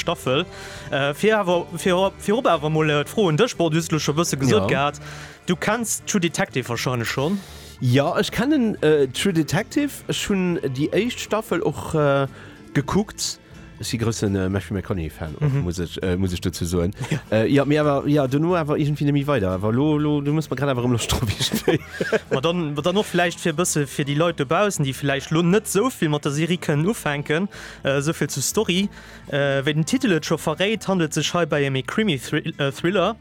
Staffel. Virop awer mol d'Fro un dech, bon, du hues et elo scho bësse gesot gehat, du kenns True Detective warscheinlech schonn? Jo, ech kennen True Detective, ech hunn déi éischt Staffel och gekuckt. Ech si grousse Matthew McConaughey-Fan och, muss ech, muss ech dozou soen. Jo, mee awer, jo, dono awer iergendwéi net méi weider. Awer elo, elo, du méchs mer grad awer erëm Loscht drop iergendwéi. Ma dann, ma dann och vläicht fir e bësse fir déi Leit dobaussen, déi vläicht elo net esou vill mat der Serie kënnen ufänken, esou vill zur Story. Wéi den Titel et scho verréit, handelt sech heibäi ëm ee Krimi-Thriller.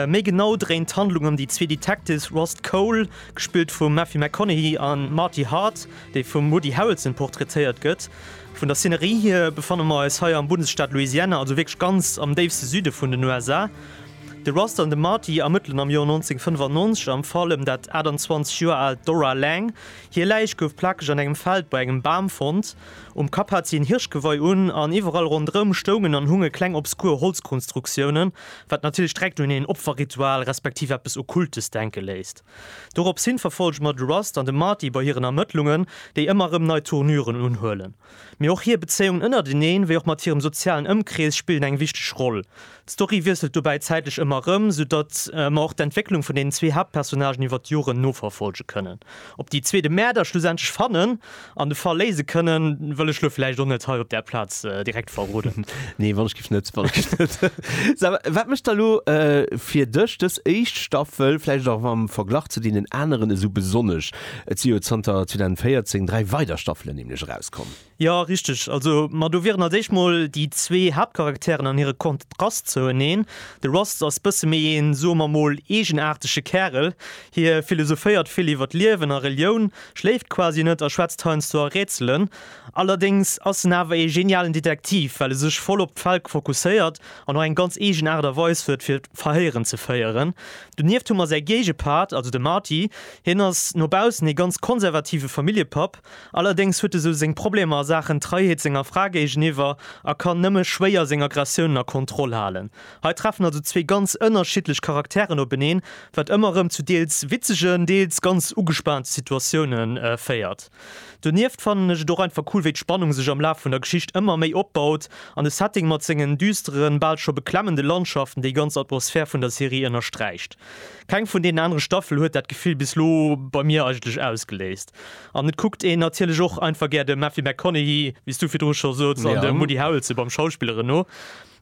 Méi genau dréint d'Handlung ëm déi zwee Detectives Rost Cole, gespillt vum Matthew McConaughey, a Marty Hart, dee vum Woody Harrelson portraitéiert gëtt. Vun der Szenerie hir befanne mer eis hei am Bundesstaat Louisiana, also wierklech ganz am déifste Süde vun den USA. De Rost an de Marty ermëttelen am Joer 1995 am Fall ëm dat 28 Joer aalt Dora Lang. Hir Läich gouf plakeg an engem Feld bei engem Bam fonnt. Um Kapp hat si en Hirschgewei un an iwwerall rondrëm stoungen an hunge kleng obskur Holzkonstruktiounen, wat natierlech direkt un een Opferritual respektiv eppes Okkultes denke léisst. Doropshin verfollege mer de Rust an de Marty bei hiren Ermëttlungen, déi ëmmer erëm nei Tournüren unhuelen. Mee och hir Bezéiung ënnerteneen, wéi och mat hirem sozialen Ëmkrees spillen eng wichteg Roll. D'Story wiesselt dobäi zäitlech ëmmer erëm, sou datt mer och d'Entwécklung vun deenen zwee Haaptpersonnagen iwwert d'Joren noverfolge kënnen. Ob déi zwee de Mäerder schlussendlech fannen an de Fall léise kënnen, wëll ech lo vläicht och net hei op där Plaz direkt verroden. Nee, wann ech giff net. Wann ech giff net. Sava, wat mécht da lo fir dech dës éischt Staffel vläicht och am Verglach zu deenen aneren esou besonnesch? Et si jo zanter 2014 dräi weider Staffelen nämlech erauskomm. Jo, richteg. Also, ma do wieren als éischt mol déi zwee Haaptcharakteren an hire Kontrast zoueneen. De Rust ass bësse méi een, soe mer mol, eegenaartege Kärel. Hie philosophéiert vill iwwer d'Liewen a Relioun, schléift quasi net a schwätzt heiansdo a Rätselen. Allerdéngs ass en awer ee genialen Detektiv, well e sech voll op d'Fäll fokusséiert an och eng ganz eegen Aart a Weis huet, fir d'Verhéieren ze féieren. Donieft hu mer säi Géigepart, also de Marty. Hien ass no baussen ee ganz konservative Familljepapp. Allerdéngs huet e sou seng Problemer a Saachen Treiheet senger Fra géigeniwwer a kann nëmme schwéier seng Aggressiounen a Kontroll halen. Hei treffen also zwee ganz ënnerschiddlech Charakteren openeen, wat ëmmer erëm zu deels witzegen, deels ganz ugespaante Situatioune féiert. Donieft fannen ech et och einfach cool, wéi d'Spannung sech am Laf vun der Geschicht ëmmer méi opbaut an de Setting mat sengen düsteren, bal scho beklemmende Landschaften déi ganz Atmosphär vun der Serie ënnersträicht. Keng vun deenen anere Staffele huet dat Gefill bis lo bei mir eigentlech ausgeléist. An et kuckt een natierlech och einfach gär de Matthew McConaughey, wéi s du virdru scho soz, an de Woody Harrelson beim Schauspilleren no.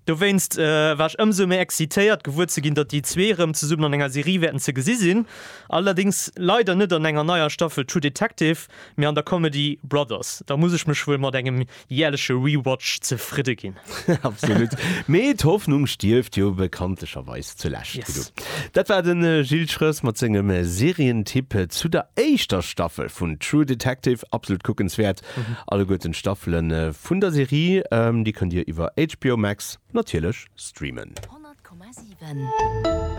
Dowéinst war ech ëmsou méi excitéiert, gewuer ze ginn, datt déi zwee erëm zesummen an enger Serie wäerten ze gesi sinn. Allerdéngs leider net an enger neier Staffel True Detective, mee an der Comedy Brothers. Da muss ech mech wuel mat engem jäerleche Rewatch zefridde ginn. Absolut. Mee d'Hoffnung stierft jo bekanntlecherweis zulescht. Yes. Dat war de Gilles Schröß mat sengem Serientipp zu der éischter Staffel vun True Detective. Absolut kuckenswäert, alleguerten d'Staffele vun der Serie. Déi kënnt Dir iwwer HBO Max natierlech streamen. 100,7.